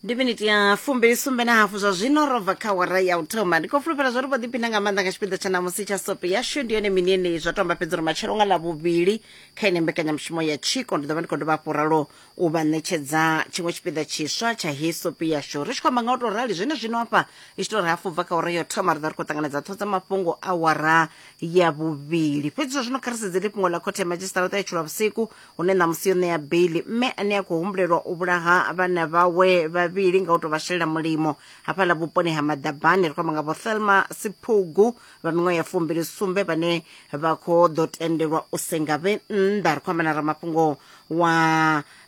ndi miniti ya fumbili sumbe na hafu zwa zwino ro bva kha wara ya u thoma ndi khou fulufhela zwo ri vho ḓiphina nga maanḓa nga tshipiḓa tsha namusi tsha sope yashu ndi yone mini yeneyi zwa tomba fhedzi uri matshelo nga ḽa vhuvhili kha ine mbekanyamushumo ya tshiko ndi ḓo vha ndi khou dovha hafhu ralo u vha ṋetshedza tshiṅwe tshipiḓa tshiswa tsha heyi sope yashu ri tshi khou amba nga u tou rali zwene zwino hafha i tshi tou ri hafu bva kha wara ya u thoma ri ḓo ri khou ṱanganedza ṱho dza mafhungo a wara ya vhuvhili fhedzi zwa zwino kha ri sedzele fhungo ḽa khothe ya madzhisiṱaraṱa ya tshilwa vhusiku hune ṋamusi yo ṋea beili mme ane a khou humbulelwa u vhulaha vhana vhawe vhavhili nga u tou vha shelela mulimo hafhaḽa vhuponi ha maḓabani ri khou amba nga vho thelma siphugu vha miṅwaha ya fumbili sumbe vhane vha khou ḓo tendelwa u senga vhe nnḓa ri khou amba na ramafhungo wa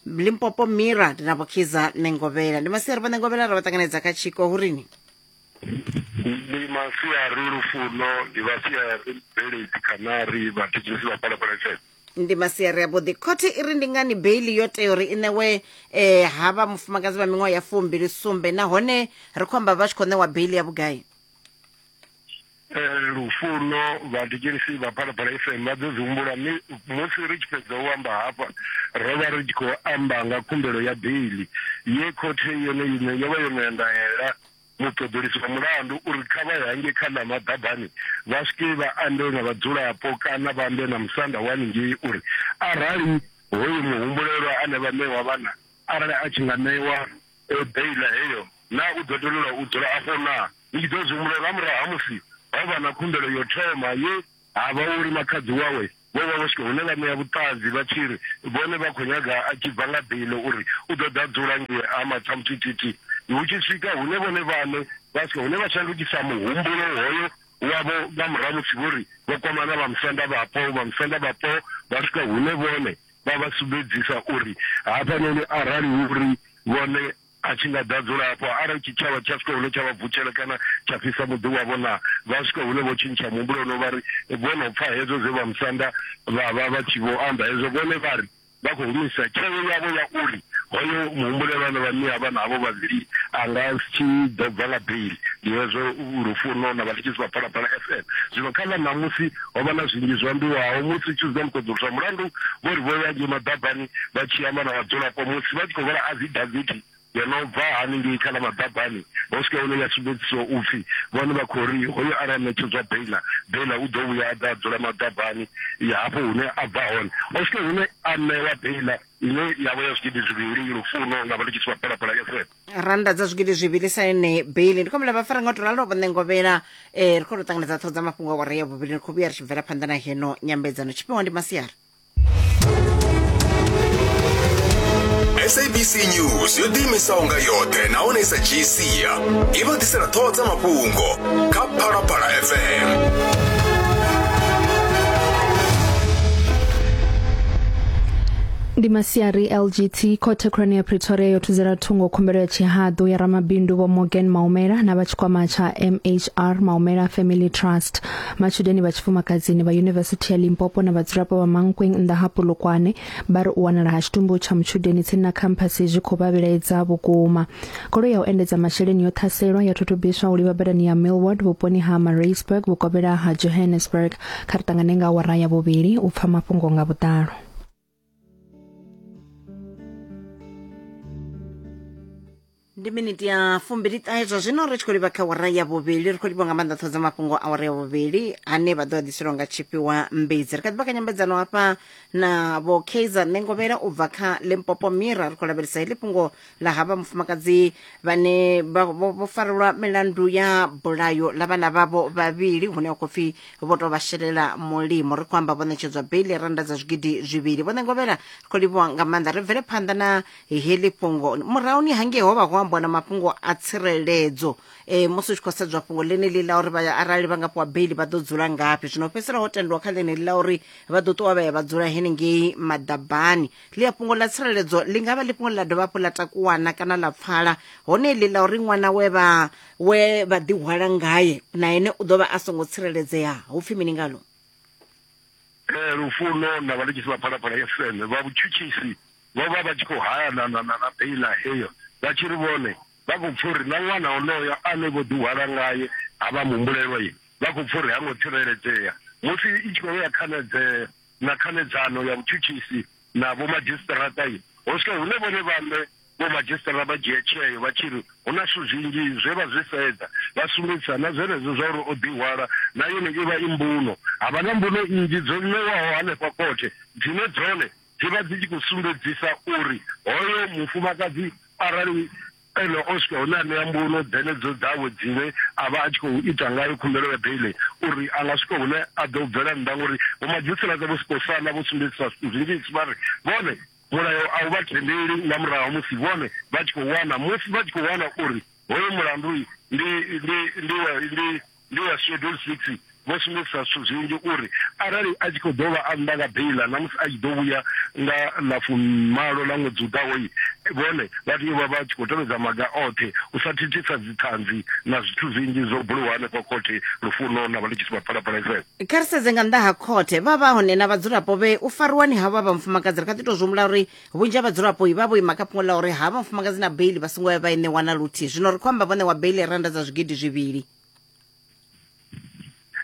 limpopo mira ndi na vhokhiza ṋengovhela ndi masiari vho ṋengovhela ra vha ṱanganedza kha tshiko hu rini ndi masiari lufuno ndi vhasiari bveledzi khanari vhathetshelesi vha phalaphala fm ndi masiari avhuḓi khothe i ri ndi ngani beili yo tea uri i ṋewe um ha vha mufumakadzi vha miṅwaha ya fumbili sumbe nahone ri khou amba vha tshi khou ṋewa beili ya vhugai Eh, lufuno vhathetshelisi vha phalaphala fm vha ḓo dzi humbula mi musi ri tshi fhedza u amba hafha ro vha ri tshi khou amba nga khumbelo ya beili ye khothe yone iṋe yo vha yo no ya ndaela Muṱoḓulusi wa mulandu u ri kha vha ye hangei kha ḽa maḓabani vha swike vha ambe na vhadzulapo kana vha ambe na musanda wa haningei uri arali hoyu muhumbulelwa ane vha ṋewa vhana arali a tshi nga ṋewa beiḽa heyo naa u ḓo tendelwa u dzula afho naa. Ni tshi ḓo zwi humbulela nga murahu ha musi ho vha na khumbelo ya u thoma ye Ha vha uri makhadzi wawe vho vha vho swika hune vha ṋea vhuṱanzi vha tshi ri vhone vha khou nyaga a tshi bva nga beile uri u ḓo ḓa a dzula ngei Ha Matsamuthithithi. Hu tshi swika hune vhone vhaṋe vha swika hune vha shandukisa muhumbulo hoyo wavho nga murahu ha musi vho ri vho kwamana na vhamusanda vhapo, vhamusanda vhapo vha swika hune vhone vha vha sumbedzisa uri hafhanoni arali hu uri vhone. A tshi nga ḓa a dzula hafho. Arali tshitshavha tsha swika hune tsha vha vutshela kana tsha fhisa muḓi wavho, naa vha swika hune vho tshintsha muhumbulo no vha ri vho no pfa hezwo zwe vhamusanda vha vha vha tshi vho amba? Hezwo vhone vha ri vha khou humisa tsheo yavho ya uri hoyo muhumbulelwa ane vha ṋea vhana havho vhavhili a nga si ḓo bva nga beili. Ndi hezwo Lufuno na Vhathetshelesi vha Phalaphala FM zwino kha ḽa ṋamusi. ho vha na zwinzhi zwo ambiwaho musi tshi dza muṱoḓulu zwa mulandu vho ri vho ya ngei maḓabani vha tshi amba na vhadzulapo musi vha tshi khou vhala afidaviti yo no bva haningei kha ḽa maḓabani ho swika hune ya sumbedzisiwa u pfhi vhone vha khou ri hoyo arali a ṋetshedzwa beila beila u ḓo vhuya a ḓa a dzula maḓabani ya hafho hune a bva hone ho swika hune a ṋewa beila ine ya vha ya zwigidi zwivhili lufuno na vha ndi tshi tshi vha phalaphala fm rannda dza zwigidi zwivhili sa yone beli ndi khou humbela vhafara nga u to ralo vho ṋengovhela um ri khou to ṱanganedza ṱhoho dza mafhungo a wara ya vhuvhili ri khou vhuya ri tshi bvela phanḓa na heno nyambedzano tshifhiwa ndi masiari sabc news yo ḓiimisaho nga yoṱhe nahone i sa dzhii sia i vha ḓisela ṱhoho dza mafhungo kha phalaphala fm ndi masiari lgt khothe khulwane ya pretoria yo thudzela thungo khumbelo ya tshihaḓu ya ramabindu vho morgan maumela na vha tshikwama tsha mhr maumela family trust matshudeni vha tshifumakadzini vha yunivesithi ya limpopo na vhadzulapo vha mankweng nnḓa ha polokwane vha ri u wanala ha tshitumbu tsha mutshudeni tsini na khamphasi zwi khou vha vhilaedza vhukuma goloi ya u endedza masheleni yo ṱhaselwa ya thutubiswa u livha badani ya millward vhuponi ha mareisburg vhukovhela ha johannesburg kha ri ṱangane nga awara ya vhuvhili u pfa mafhungo nga vhuḓalo ndi miniti ya fumbili ṱahe zwa zwino ri tshi khou livha kha wara ya vhuvhili ri khou livha nga maanḓa ṱhoho dza mafhungo a wara ya vhuvhili ane vha ḓo a ḓiselwa nga tshifhiwa mbidzi ri kha ḓi vha kha nyambedzano hafha na vho kaizer nengovhela u bva kha limpopo mira ri khou lavhelesa heḽi fhungo ḽa havha mufumakadzi vhane vha- vho vho farelwa milandu ya bulayo ḽa vhana vhavho vhavhili hune ha khou pfi vho tou vha shelela mulimo ri khou amba vho ṋetshedzwa beili ya rannda dza zwigidi zwivhili vho ṋengovhela ri khou livhuwa nga maanḓa ri bvele phanḓa na heḽi fhungo murahuni hangei ho vha ho ambiwa na mafhungo a tsireledzo e, musi u tshi khou sedzwa fhungo ḽeneḽi ḽa uri vha- arali vha nga fhiwa beili vha ḓo dzula ngafhi zwino fhedzisela ho tendiwa kha ḽeneḽi ḽa uri vha ḓo ṱuwa vha ya vha dzula henengei maḓabani ḽi a fhungo ḽa tsireledzo ḽi nga vha ḽi fhungo ḽa dovha hafhu ḽa takuwana kana ḽa pfala hone ḽi ḽa uri ṅwana we vha we vha ḓihwala ngaye na ene u ḓo vha a songo tsireledzea hu pfhi mini ngalo eh, lufuno na vhalikisi vha phalaphala ya fm vha vhutshutshisi vho vha vha tshi khou hayana na na na beila heyo vha tshi ri vhone vha khou pfa uri na ṅwana onoyo ane vho ḓihwala ngaye ha vha muhumbulelwa ye vha khou pfa uri ha ngo tsireledzea musi i tshi khou ya khanedzea na khanedzano ya vhutshutshisi na vhomadzhisiṱiraṱa i ho swika hune vhone vhaṋe vhomadzhisiṱirara vha dzhia tsheo vha tshi ri hu na zwithu zwinzhi zwe vha zwi sedza vha sumbedzisa na zwenezwo zwa uri o ḓihwala na yone i vha i mbuno. Ha vha na mbuno nnzhi dzo ṋewaho hanefha khothe dzine dzone dzi vha dzi tshi khou sumbedzisa uri hoyo mufumakadzi arali Ene Oscar hune a ṋea mbuno dzenedzo dzawe dzine a vha a tshi khou ita ngayo khumbelo ya beiḽi u ri a nga swika hune a ḓo bvela nnḓa ngauri vhomadzhisiṱiraṱa Vho Skhosana vho sumbedzisa zwithu zwinzhisi vha ri vhone mulayo a u vha tendeli nga murahu ha musi vhone vha tshi khou wana musi vha tshi khou wana uri hoyo mulandu ndi ndi ndi wa ndi Ndi ya Schedule 6, vho sumbedzisa zwithu zwinzhi uri arali a tshi khou dovha a nnḓa nga beiḽa na musi a tshi ḓo vhuya nga ḽa fumimalo ḽa ṅwedzi u ḓaho, vhone vha tea u vha vha tshi khou tevhedza maga oṱhe u sa thithisa dziṱhanzi na zwithu zwinzhi zwo buliwaho henefha khothe Lufuno na Vhaletshisi vha Phalaphala FM. Kha ri sedze nga nnḓa ha khothe. Vha vha hone na vhadzulapo vhe u fariwani havho ha vha mufumakadzi ri kha ḓi tou zwi humbula uri vhunzhi ha vhadzulapo vha vho ima kha fhungo ḽa uri ha vha mufumakadzi na beili vha songo ya vha i ṋewa na luthihi zwino ri khou amba vho ṋewa beili randa dza zwigidi zwivhili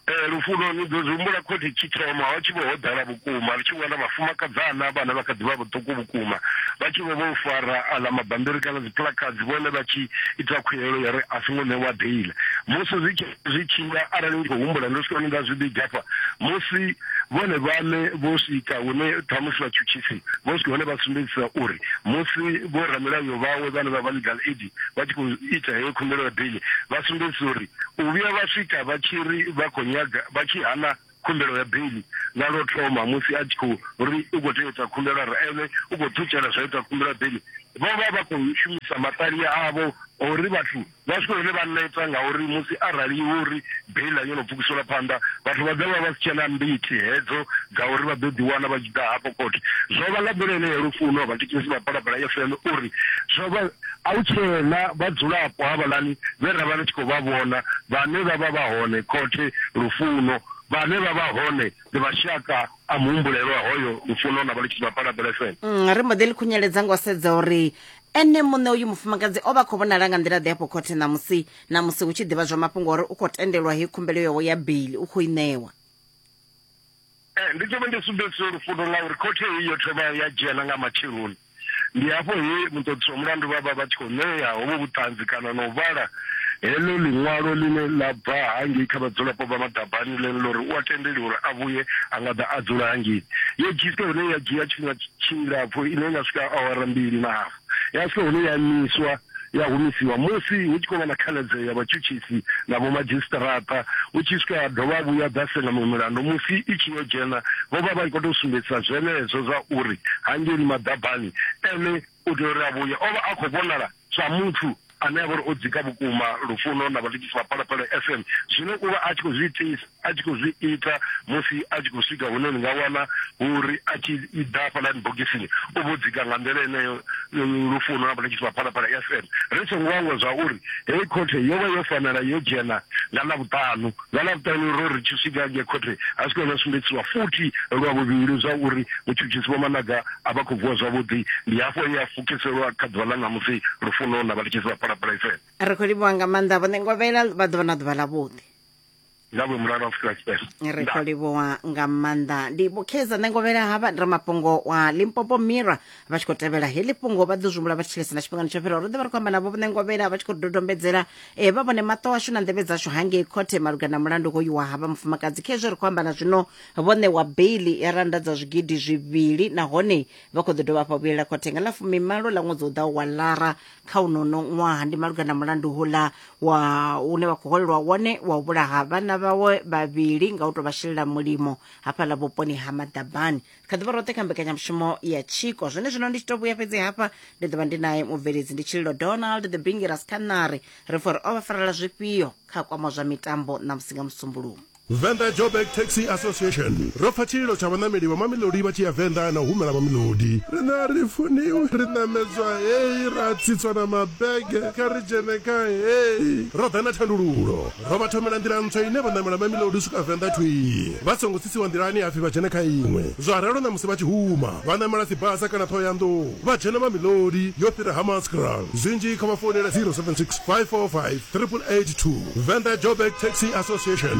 Eh, lufuno ni ḓo zwi humbula khothi tshi thoma ho tshi vho ho ḓala vhukuma ri tshi wana vhafumakadzana vhana vha kha ḓi vha vhuṱuku vhukuma vha tshi vho vho fara aḽa mabambiri kana dziplakadzi vhone vha tshi ita khuelo ya ri a songo ṋewa beila musi zwi tshi zwi tshi nga arali ndi khou humbula ndo swika nda zwi vhiga hafha musi vhone vhane vho swika hune ṱhamusi vhatshutshisi vho swika hone vha sumbedzisa uri musi vho ramilayo vhawe vhane vha vha legal aid vha tshi khou ita heyo khumbelo ya beli vha sumbedzisa uri u vhuya vha swika vha tshi ri vha khou nyaga vha tshi hana khumbelo ya beiḽi nga lwo thoma musi a tshi khou ri u khou tea u ita khumbelo a ri ene u khou ṱutshela zwa ita khumbelo ya beiḽi vho vha vha khou shumisa maṱali avho uri vhathu vha swike hune vha neta ngauri musi arali hu uri beiḽi a yo no pfukisela phanḓa vhathu vha ḓo vha vha si tshena mbiti hedzo dza uri vha ḓo ḓiwana vha tshi ḓa hafho khothe zwo vha nga nḓila ine ya lufuno vhathekisi vha balabala fm uri zwo vha A hu tsheena vhadzulapo havhaḽani vhe ra vha ri tshi khou vha vhona, vhane vha vha vha hone khothe lufuno, vhane vha vha hone ndi mashaka a muhumbulelwa hoyo lufuno na vhalutshisi vha Paladelefene. Ri mbo ḓi ḽi khunyeledza nga u sedza uri ene muṋe uyu mufumakadzi o vha a khou vhonala nga nḓila-ḓe afho khothe ṋamusi, ṋamusi hu tshi ḓivhadzwa mafhungo a uri u khou tendelwa heyi khumbelo yawe ya beili u khou i ṋewa. Ee, ndi ḓo vha ndi sumbedzisa uri fundo ḽa uri khothe heyi yo thoma ya dzhena nga matsheloni ndi hafho he muṱoḓisi wa mulandu vha vha vha tshi khou ṋea hovho vhuṱanzi kana na u vhala heḽo ḽiṅwalo ḽine ḽa bva hangei kha vhadzulapo vha madabani ḽene ḽo ri u a tendeliwa uri a vhuye a nga ḓa a dzula hangei yo dzhisa hune ya dzhia tshifhinga tshilapfu ine ya swika awara mbili na hafu ya swika hune ya imiswa ya humisiwa musi hu tshi khou vha na khanadzeo ya vhatshutshisi na vhomadzhisiṱiraṱa hu tshi swika ya dovha vhuya dza senga miṅwe milandu musi i tshi yo dzhena vho vha vha tshi khou tou sumbedzisa zwenezwo zwa uri hangeni maḓabani ene u tea uri a vhuye o vha a khou vhonala sa muthu ane a vha uri o dzika vhukuma lufuno na vhathetshelesi vha Phalaphala FM zwine u vha a tshi khou zwi itisa a tshi khou zwi ita musi a tshi khou swika hune ni nga wana uri a tshi ḓa hafhaḽani bogisini u vho dzika nga nḓila eneyo lufuno na vhathetshelesi vha Phalaphala FM ri songo hangwa zwa uri heyi khothe yo vha yo fanela yo dzhena nga ḽa vhuṱanu Nga Ḽavhuṱanu ro ri tshi swika ngei khothe, a zwi ngo vhuya zwa sumbedziswa futhi lwa vhuvhili zwa uri mutshutshisi Vho Managa a vha khou vuwa zwavhuḓi. Ndi hafho he a pfukiselwa kha ḓuvha ḽa ṋamusi, Lufuno, na vhathetshelesi vha Phalaphala FM. Ri khou livhuwa nga maanḓa Vho Ṋengovhela, vha ḓo vha na ḓuvha ḽavhuḓi. Nga vhuimo la Afrika Tshipembe. Ri khou livhuwa nga maanḓa. Ndi Vho Kheza Ṋengovhela, ha vha ramafhungo wa Limpopo Mirror. vha tshi khou tevhela heḽi fhungo vha ḓo zwimbula vha tshi tshilesana tshifhingani tsho fhiraho ro ḓo vha ri khou amba navho vhone ngovhela vha tshi khou dodombedzela um vha vhone maṱo ashu na nḓevhe dzashu hangei khothe malugana na mulandu hoyu wa havha mufumakadzi kha hezwo ri khou amba na zwino vho ṋewa beili ya randa dza zwigidi zwivhili nahone vha khou ḓo dovha hafha vhuyelela khothe nga ḽa fumimalo ḽa ṅwedzi u ḓaho wa lara kha unono ṅwaha ndi malugana na mulandu hula wa une vha khou holelwa wone wa u vhulaha vhana vhawe vhavhili nga u tou vha shelela mulimo hafhaḽa vhuponi ha maḓabani kha ḓuvha roṱhe kha mbekanyamushumo ya tshiko zwone zwino ndi tshi to vhuya fhedzi hafha ndi ḓovha ndi naye mubveledzi ndi tshililo donald the bingi raskanari ri fo ri o vha farela zwifhio kha kwama zwa mitambo na musi nga musumbulumo Venḓa Joburg Taxi Association ro pfa tshililo tsha vhaṋameli vha Mamelodi vha tshi ya Venḓa na u humela Mamelodi. Riṋe a ri funiwi, ri ṋamedzwa hei, ra tsitswa na mabege, kha ri dzhene kha hei. Ro ḓa na thandululo. Ro vha thomela nḓila ntswa ine vha ṋamela Mamelodi u swika Venḓa thwii vha songo tsisiwa nḓilani hapfi vha dzhene kha iṅwe. Zwa ralo na musi vha tshi huma vha ṋamela Sibasa kana Thohoyandou vha dzhena Mamelodi yo fhira Hammanskraal. Zwinzhi kha vha founele 076 545 8882. Venḓa Joburg Taxi Association.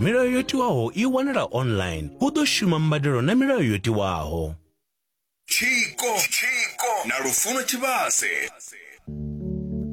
Milayo yo tiwaho i wanala online. Hu ḓo shuma mbadelo na milayo yo tiwaho. Tshiko na Lufuno Tshivhase.